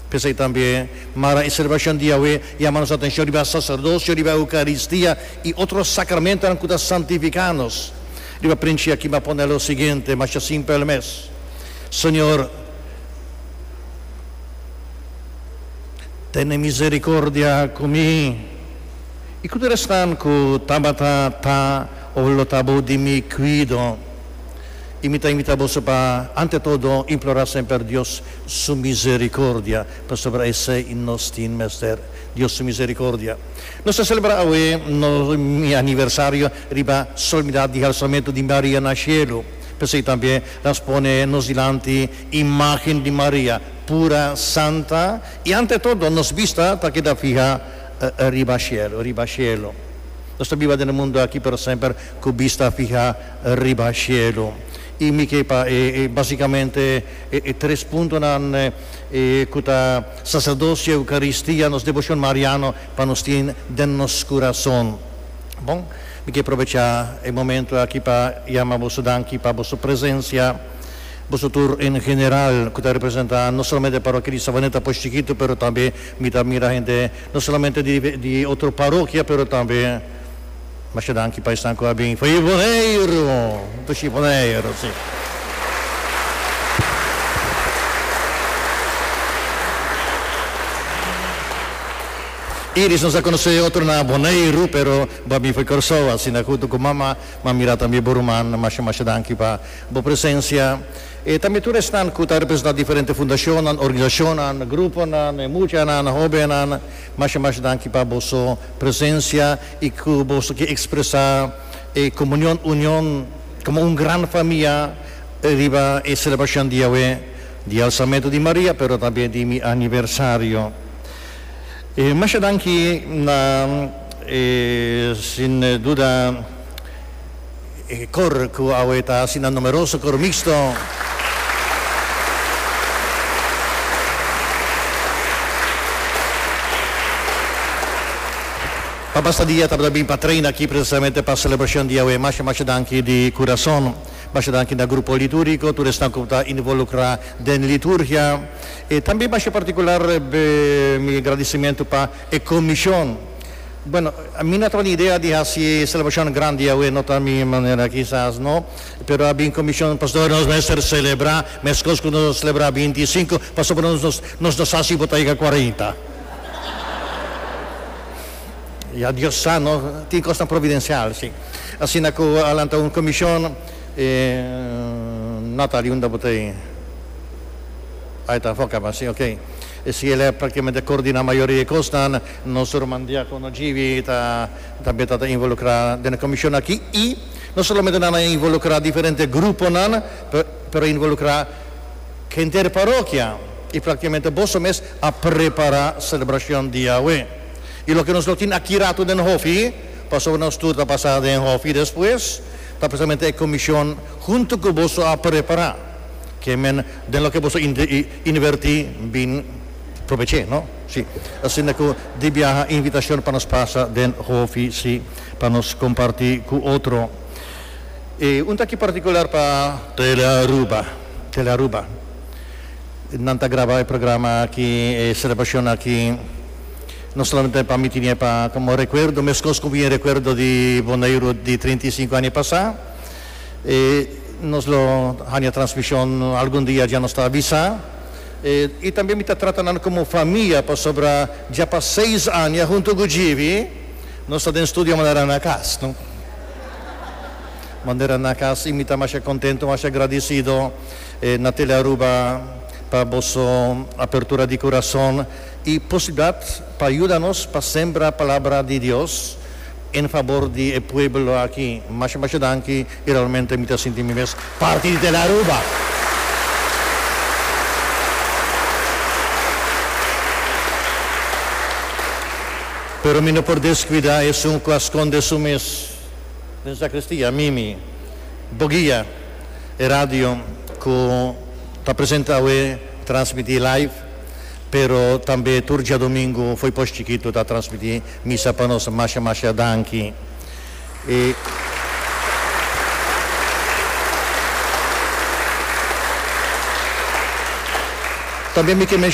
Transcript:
P'esei tambe, Mara e selebrashon di Yahweh yama nos atenshon riba saserdosio, riba Eukaristia i otro sakramentunan ku ta santifiká nos. Riba princhi aki mi a pone lo siguiente, masha simpel mes, Señor, tene miserikordia ku mi. I ku tur esnan ku tabata ta òf lo ta bo di mi kuido. I mi ta invitá boso pa ante todo implorá semper Dios Su misericordia, pasobra esei i nos tin mester, Dios su misericordia. Nos ta celebra awe nos aniversario riba solemnidad di halsamentu di Maria na cielo. P'esei tambe nos pone nos dilanti imagen di Maria, pura, santa, i ante todo nos bista ta keda fiha riba cielo, riba cielo. Nos ta biba den e mundu aki pero semper cu bista fiha riba cielo. I mi ke pa e basicamente. E tres puntonan ku ta Saserdocio, Eukaristia, nos Deboshon Mariano pa nos tin den nos kurason. Bon, mi ke probechá e momentu aki pa yama boso danki pa boso presensia, boso tur en general ku ta representá no solamente e parokia di Sabaneta Push Chikitu pero tambe mi ta mira hende no solamente di otro parokia pero tambe, Masha danki pa esnan ku a bin for e Boneiru, Anto shi Boneiru si. Iris nos a konosé otro na Boneiru pero bo a bin for Kòrsou asina huntu ku mama, m'a mira tambe bo ruman, masha masha danki pa bo presensia. E tambe tur esnan ku ta representá diferente fundashonnan, organisashonnan, gruponan, e muchanan, hóbennan, masha masha danki pa boso. Presencia y cu boso ki expresa e comunion, union, como un gran famia riba e celebracion di Yahweh, di Alzamento di Maria, pero tambe di mi aniversario. E masha danki na, e sin duda. E kor ku awe ta hasi nan numeroso kor mixto pa basta dia tabata bin pa treina aki presisamente pa selebrashon di awe. Masha masha danki di kurason. Masha danki na grupo litúrgiko, tur esnan ku ta involukrá den liturgia. E tambe masha partikular mi agradisimentu pa. E comishon. Bueno, mi no tabata idea di hasi e celebrashon grandi awe, no ta mi manera, kisas no, pero a bin comishon pasobra nos mester celebra mescos cu nos a celebra binti i sinku, pasobra nos no nos no sa si bo ta yega cuarenta. Ya, Dios sa no, tin cosnan providencial, si. Asina cu a lanta un comishon, e nota di unda bo ta e. Ay ta foca, ma si, ok. Esei lep ta kimen ta coordina mayoria e cosnan. Nos ruman diacono Jivi ta tambe ta ta involucra den e comision aki y no solamente nan a involucra diferente gruponan pero involucra henter parokia y practicamente boso mes a prepara celebracion di Yahwe y loke nos lo tin aki rato den hofi pasobra nos tur ta pasa den hofi despues ta precisamente e comision hunto cu boso a prepara kimen den loke boso. Inverti bin probeche no si. Asinda cu di biaha invitacion pa nos pasa den hofi si pa nos comparti cu otro. E un ta aki particular pa. Tele Aruba. Tele Aruba nan ta graba e programa aki, e celebracion aki no solamente pa miti nie pa como recuerdo mescos cu bien recuerdo di Boneiru di trinta y cinco aña pasa. E nos lo haña transmishon algun dia dja nos ta avisá. E i tambe mi ta trata nan komo famia pasobra dja pa seis aña huntu ku Jivi nos ta den studio manera na kas no. Manera na kas i mi ta masha kontentu, masha gradisido na Tele Aruba pa boso apertura di kurason i posibilidat pa yuda nos pa sembra palabra di Dios. en fabor di e pueblo aki masha masha danki y realmente mi ta sinti mi mes parti di Tele Aruba. Pero mi no por descuida esun cu a sconde su mes den sacristia, Mimi, Boguia, e radio cu ta presenta awe transmiti live pero tambe tur diadomingo fo'i pos chikito ta transmiti Mi sa pa nos masha masha danki i tambe mi ke menshona.